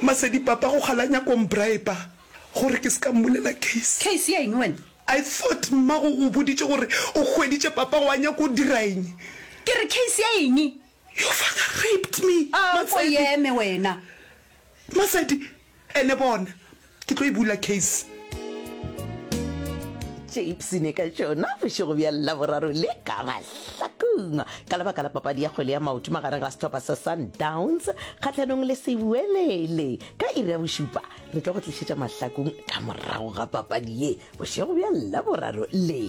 Masedi papa go kgala nyako mbriba gore ke se ka mmulela case. Case ya eng wena? I thought mmago o boditše gore o hweditše papa wa nyako o dira eng? Ke re case ya eng? Your father raped me, Masedi. A ko eme wena. Masedi, Ene bona, ke tlo e bula case. Chips ne ka tšona bošego bja Laboraro le ka mahlakong ka lebaka la papadi ya kgwele ya maoto magareng ga sehlopha sa Sundowns kgahlanong le Sewelele. Ka iri ya bošupa re tlo go tlišetša mahlakong ka morago ga papadi ye bošego bja Laboraro le.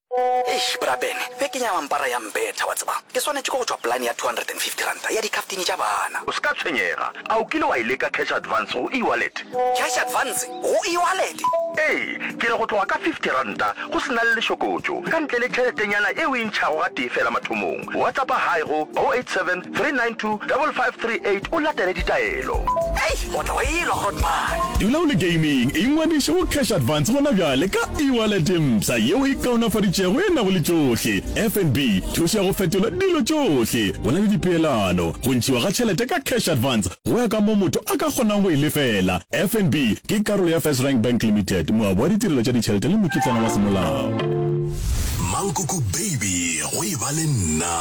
Eish bra Ben, beke ya mampara ya mbetha wa tseba. Ke swanetše ke go tšwa polane ya R250 ya dikhaftini tša bana. O se ka tshwenyega. A o kile wa e leka cash advance go e-wallet? Cash advance go e-wallet? Ee, ke re go tloga ka R50 go se na le lešokotšo, ka ntle le tšheletenyana e o e ntšhago gatee feela mathomong. WhatsAppa Hi go 087 392-5538 o latele ditaelo. Hei, o tla wa elwa hot man. Dula o le gaming, ingwadiše go Cash Advance gona bjale ka e-wallet mpsha yeo e kaonafaditšwego e nago le tšohle, FNB, thušo ya go fetola dilo tšohle, go na le dipeelano, go ntšhiwa ga tšhelete ka Cash Advance go ya ka mo motho a ka kgonang go e lefela. FNB ke karolo ya FirstRand Bank Limited, moabi wa ditirelo tša ditšhelete le mokitlana wa semolao. Mankoko baby go e ba le nna.